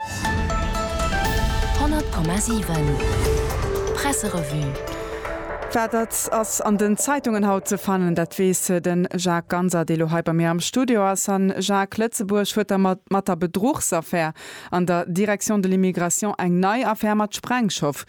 100,7 Presserevue. Wat dat ass an den Zeitungen haut ze fannen, dat weess de Jacques Ganser, dee lo hei bei mir am Studio ass. A Jacques, Lëtzebuerg huet da mat der Bedruchsaffär an der Direction de l'immigration eng nei Affär mat Sprengstoff.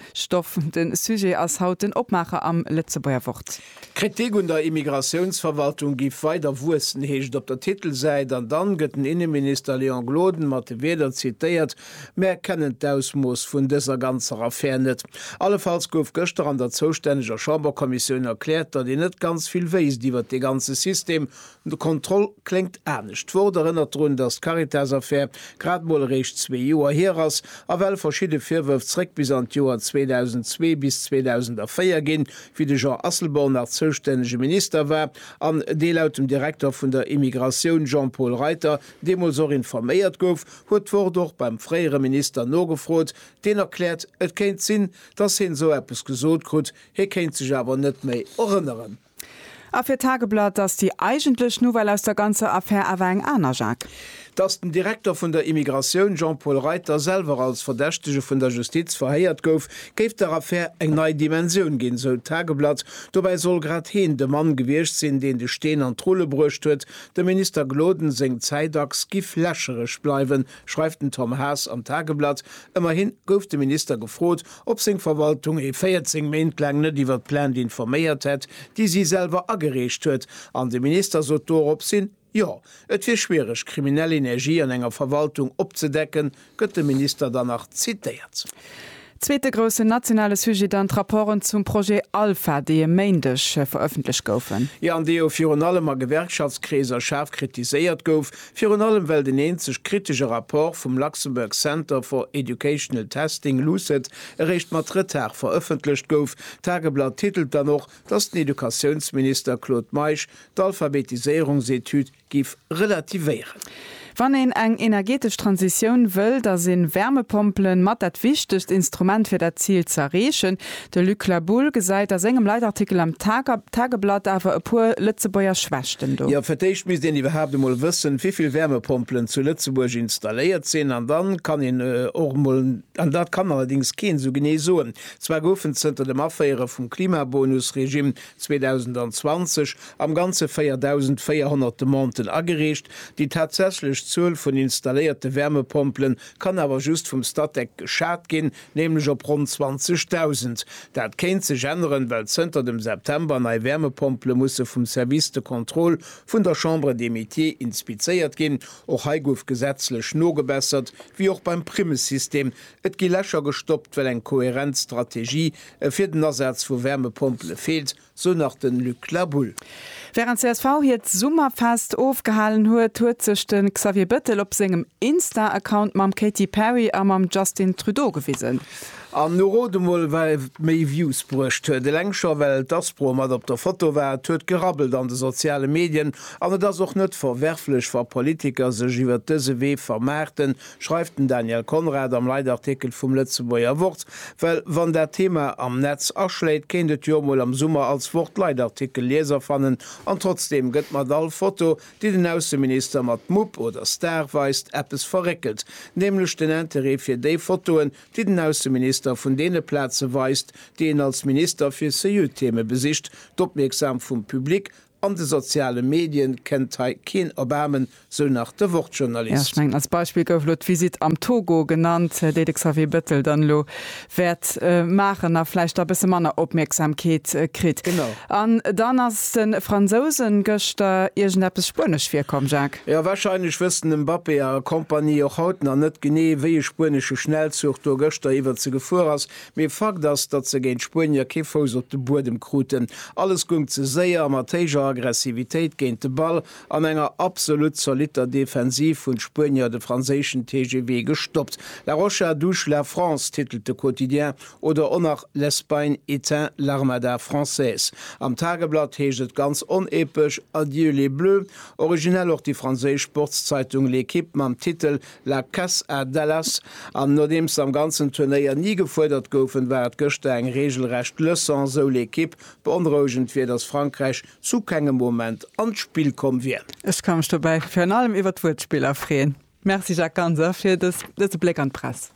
De Sujet ass haut den Opmaacher am Lëtzebuerger Wort. D'Kritik un der Immigratiounsverwaltung giff weider wuessen, heescht et op der Titelsäit, an dann gëtt den Inneminister Léon Gloden mat de Wierder zitéiert, Mär kennen d'Ausmooss vun dëser ganzer Affär net. Allefalls gouf gëschter an der zoustänneger Chamberkommissioun erkläert, datt een net ganz vill wéisst iwwert dee ganze System, De Contrôle kléngt anescht. D'Wort erënnert drun, datt d'Caritas-Affär grad mol eréischt zwee Joer hier ass a well verschidde Virwërf zréck bis an d'Joer 2002 bis 2004 ginn, wéi de Jean Asselborn nach zoustännege Minister war an dee laut dem Direkter vun der Immigratioun Jean-Paul Reiter deemools och informéiert gouf, huet d'Wort och beim fréiere Minister nogefrot, deen erkläert, et kéint sinn, datt heen esou eppes gesot krut, hie kéint sech awer net méi erënneren. A fir d'Tageblatt ass déi eigentlech Nouvelle aus der ganzer Affär awer eng aner, Jacques. Datt den Direkter vun der Immigratioun Jean-Paul Reiter selwer als Verdächtege vun der Justiz verhéiert gouf, géif der Affär eng nei Dimensioun ginn, sou d'Tageblatt. Dobäi soll grad heen de Mann gewiescht sinn, deen de Steen an d'Rulle bruecht huet. Dem Minister Gloden seng Zäitachs giff lächereg bleiwen, schreift den Tom Haas am Tageblatt. Ëmmerhi gouf de Minister gefrot, ob seng Verwaltung e 14 Méint laang net iwwer d'Plainte informéiert hätt, déi si selwer agereecht huet, an de Minister sot doropshin, Jo, et wier schwiereg, kriminell Energie an enger Verwaltung opzedecken, gëtt de Minister dann nach zitéiert. Zweete groussen nationale Sujet dann d'Rapporten zum Projet Alpha, déi e Méindeg verëffentlecht goufen. Jo, an dee jo virun allem a Gewerkschaftskreeser schaarf kritiséiert gouf. Virun allem well den eenzeg kritesche Rapport vum Luxembourg Centre for Educational Testing, LUCET, eréischt mat Retard verëffentlecht gouf. D'Tageblatt titelt dann och, datt den Educatiounsminister Claude Meisch d'Alphabetiséierungsetüd giff relativéieren. Wann een eng energetesch Transitioun wëll, da sinn Wärmepompelen mat dat wichtegst Instrument fir dat Zil z'erreechen. De Luc La Boule gesäit a sengem Leitartikel am Tageblatt awer e puer Lëtzebuerger Schwächten do. Jo, fir d'éischt misst een iwwerhaapt emol wëssen, wivill Wärmepompelen zu Lëtzebuerg installéiert sinn. An dann kann een och emol, an dat kann allerdéngs keen esou genee soen, zwar goufen zënter dem Aféiere vum Klimabonus-Regime 2020 am Ganze 4.400 Demanden agereecht, déi tatsächlech Zuel vun installéierte Wärmepompelen kann awer just vum Statec geschat ginn. nämlech op ronn 20.000. Dat kéint sech änneren, well zënter dem September nei Wäermepompele musse vum Service de contrôle vun der Chambre des Métiers inspizéiert ginn. Och hei gouf gesetzlech nogebessert, wéi och beim Primmesystem. Et gi Lächer gestoppt, well eng kohärent Strategie fir den Asaz vu Wäermepompele feelt, sou nach den Luc La Boule. Während csv hiert Summerfest ofgehalen huet, huet sech de Xavier Bettel op sengem Insta-Account mam Katy Perry a mam Justin Trudeau gewisen. An nu rot emol wat méi Views bruecht huet. Eleng scho well d'Aspro mat op der Foto war. Et huet gerabbelt an de soziale Medien an et ass och net verwerflech wa Politiker sech iwwert dëse Wee vermaarten, schreift den Daniel Conrad am Leitartikel vum Lëtzebuerger Wort, well wann dat Thema am Netz aschléit, kéint et jo emol am Summer als Wort Leitartikel Lieser fannen, an trotzdeem gëtt mat all Foto, déi den Ausseminister mat Mupp oder Star weist, eppes verréckelt, nämlech den Interêt fir déi Fotoen, déi den Ausseminister vun deene Plaze weist, déi een als Minister fir CU-Theme besicht, d'Opmierksam vum Public An de soziale Medien kennt hei keen Erbaarmen, sou nach de Ja, ech Wort-Journalist. mengen, als Beispill gouf elo d'Visitt am Togo genannt, déi de Xavier Bettel dann elo wäert maachen a vläicht da e bësse manner Opmierksamkeet kritt. Genau. An dann ass de Fransousen gëschter iergendeppes Spuenesch virkomm, Jacques. Jo, wahrscheinlech wëssen de Mbappé a Kompanie och haut nach net genee, wéi e spuenesche Schnellzuch do gëschter iwwer se gefuer ass. Mee Fakt ass, datt se géint d'Spuenier kee Fouss op de Buedem kruten. Alles gung ze séier a mat héijer Aggressivitéit géint de Ball an enger absolut zolitter Defensiv hunn d'Spuenier de franséischen TGV gestoppt. La Rocha douce la France, titelt de Quotidien, oder och nach L'Espagne éteint l'Armada française. Am Tageblatt heescht et ganz onepesch Adieu les Bleus. Originell och déi franséisch Sportszeitung L'Équipe mam Titel La Caisse à Dallas an nodeems se am ganzen Turnéier ni gefuerdert goufen, war et gëschter eng reegelrecht Leçon, sou L'Equipe. Beonrouegend wier, datt Frankräich zu kengem Moment an d'Spill komm wier. Ech ka mech dobäi virun allem iwwert d'Wuertspiller freeën. Merci Jacques Ganser fir dëse Bléck an d'Press.